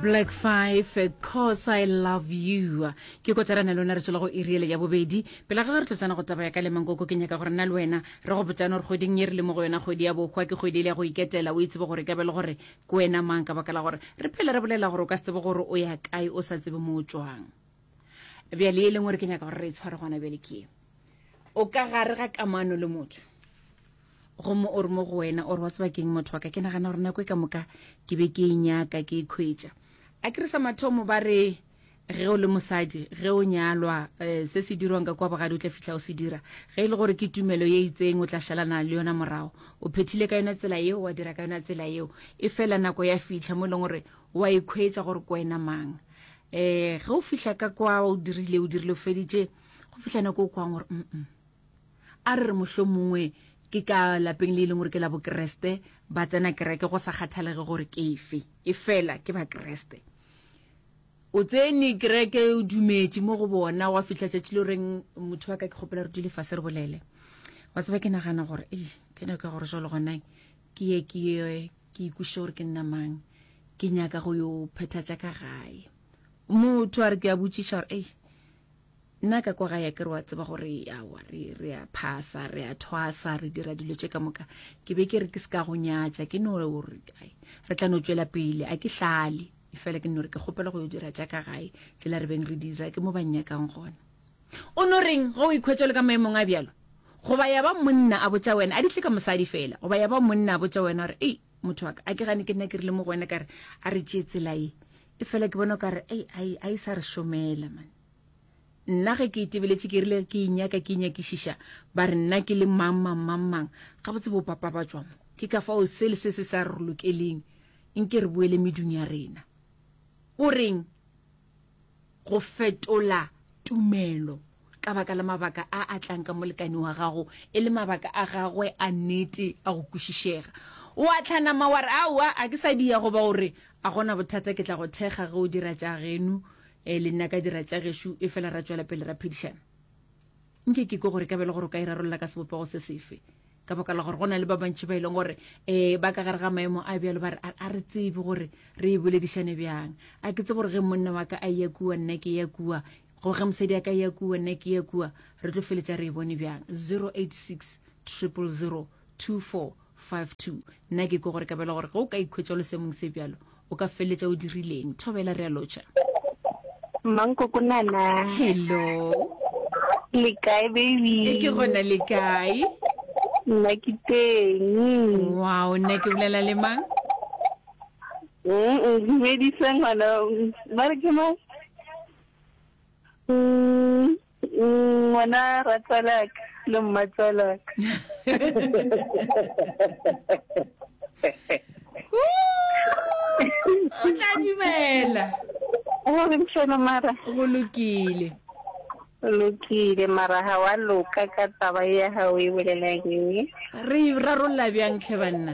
black five cause i love you ke kotsarana le lona re tswela go iriele ya bobedi pela ga re tlo tsena go taba ya ka le mankoko ke nyaka gore nna le wena re go botsane gore kgweding ye re le mo go yona kgwedi ya bohwa ke kgwedi e le ya go iketela o itsebe gore ka be le gore ke wena mang ka baka la gore re phele re bolela gore o ka se tsebe gore o ya kae o sa tsebe mo o tswang bjale e leng gore ke nyaka gore re e tshware gona bjale ke o ka gare ga kamano le motho gomme o re mo go wena o re wa tsebakeng motho wa ka ke nagana gore nako e ka moka ke be ke e nyaka ke e khwetša a ke re sa mathomo ba re ge o le mosadi ge o nyalwa um se se dirwang ka kwa bogadi o tla fitlha o se dira ge e le gore ke tumelo ye itseng o tla šalana le yona morago o phethile ka yona tsela yeo wa dira ka yona tsela yeo e fela nako ya fitlha mo e leng gore wa e khwetša gore ke wena mang um ge o fitlha ka kwa o dirile o dirile o feditše go fitlha nako o kwang gore mm A re re mohlomongwe ke ka lapeng le e leng gore ke la Bokeresete, ba tsena kereke go sa kgathalege gore ke efe, efela ke Bakeresete. O tsene kereke, o dumetše mo go bona, wa fihla tšatši le reng motho wa ka ke kgopela re dule fase re bolele. Wa tseba ke nagana gore e ke nyaka gore jalo gona ke ye ke ye ke ikweše gore ke nna mang ke nyaka go yo phethatša ka gae motho a re ke a botšiša gore ei nna ka kwa gae ke re wa tseba gore awa re re a phasa re a thwasa re dira dilo tše ka moka ke be ke re ke se ka go nyatša ke no gore ai re tla no tšwela pele a ke hlale e fela ke no re ke kgopela go yo dira tša ka gae tsela re beng re dira ke mo ba nnyakang gona o no reng ge o ikhwetša le ka maemong a bjalo goba ya ba monna a botša wena a di tle ka mosadi fela goba ya ba monna a botša wena gore ei motho wa ka a ke gane ke nna ke rile mo go wena kare a re tšee tsela e e fela ke bona o kare ei a e sa re šomela mane Nna ge ke itebeletše ke rile ke inyaka ke inyakišiša ba re nna ke le mang mang mang mang gabotse bo papa ba tšwa mo ke ka fao se le se se sa re lokeleng nke re boele medung ya rena. O reng go fetola tumelo ka baka la mabaka a a tlang ka molekane wa gago e le mabaka a gagwe a nete a go kwešišega. O a tlhanama wa re aowa a ke sa diya goba o re a gona bothata ke tla go thekga ge o dira tša genu e le nna ka dira tša gešo e fela ra tšwela pele ra phedišana nke ke ko gore ka bele gore o ka e rarolola ka sebopego se sefe ka baka la gore go na le ba bantšhi ba e leng gore um ba ka gare ga maemo a bjalo ba re a re tsebe gore re e boledišane bjang a ke tse gore ge monna wa ka a ya kua nna ke ya kua go ge mosadi a ka ya kua nna ke ya kua re tlo feletša re e bone bjang 086 triple 024 52 nna ke ko gore kabela gore ge o ka ikhwetša lo semong se bjalo o ka feleletša o dirileng thobela re a lotšha mankokonana hello le kae baby e ke gona le kae nna ke teng wow nna ke bolela le mang dumedisa ngwana ba re ke mang Ngwana ratswalaka le mmatswalaka. O tla dumela. O re mshelo mara. Go lokile. Lokile mara ha wa loka ka taba ya hao e bolelang eng? Re rarolla bjang tlhe banna?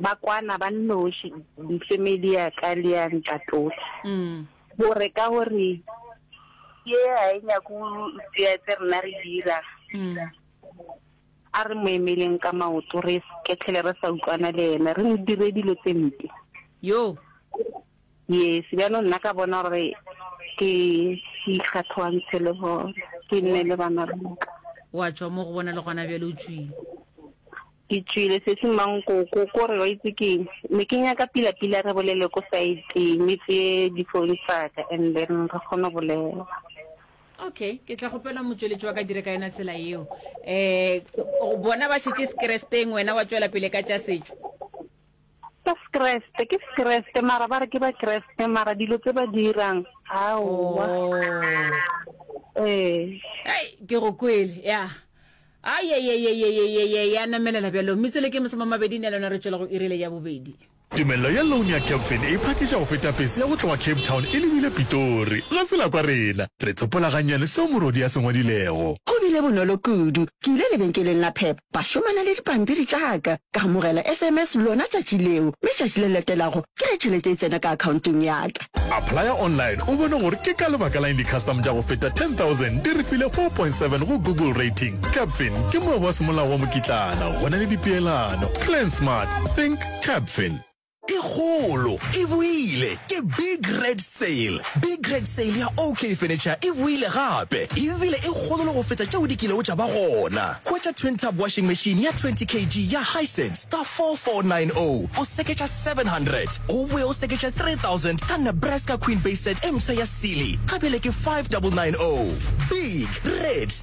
ba kwana ba nnoši family ya ka le ya ntatola gore ka gore ye ga e nyako tseya tse rena re dira a re mo emeleng ka maoto re kethele re sa utlwana le ene re mo dire dilo tse mpe yo yes bjanong nna ka bona gore ke ikgathoantshe le bone ke nne le bana ba ka wa tswa mo go bona le gona bjale o tswile Ke tšwile sesi Mankoko ko re wa itse keng ne ke nyaka pila pila re bolele ko site me tseye di phone tsaka and then re kgone bolela. Okay, ke tla gopela motsweletši wa ka dire ka yona tsela yeo. Eh bona ba šetše sekeresteng wena wa tšwela pele ka tša setšo. Ba skreste ke skreste mara ba re ke ba kreste mara dilo tse ba di irang aowa ee Hey, ke go kwele ya ayeyeyeyeyeye ya namelela bjalo metsele ke masome a mabedi ne lona re tšwela go irile ya bobedi Tumello ya loan ya Capfin e phakiša go feta pese ya go tloga Cape Town e lebile Pitori. Ga se la kwa rena. Re tsopola gannyane seo morwadi a se ngwadilego. Go bile bonolo kudu. Ke ile lebenkeleng la Pep, Ba šomana le dipampiri tša ka. Ka amogela SMS lona tšatši leo, mme tšatši le latelago ke ge tšhelete e tsena ka akhaontong ya ka. Applya online o bone gore ke ka lebaka la'ng di-custom tša go feta 10,000 di re file 4.7 go Google Rating. Capfin ke moabi wa semolao wa mokitlana, go na le dipeelano. Plan Smart, Think Capfin. e kgolo e boile ke big red sale big red sale ya ok furniture e boile gape ebile e kgolo le go feta tšeo di kilego tša ba gona hwetša twin tub washing machine ya 20 kg ya hisense ka 4490 o seketša 700 go boe o seketša 3000 ka nebraska queen bay set e mpsha ya sealy ka bjale ke 5990 big red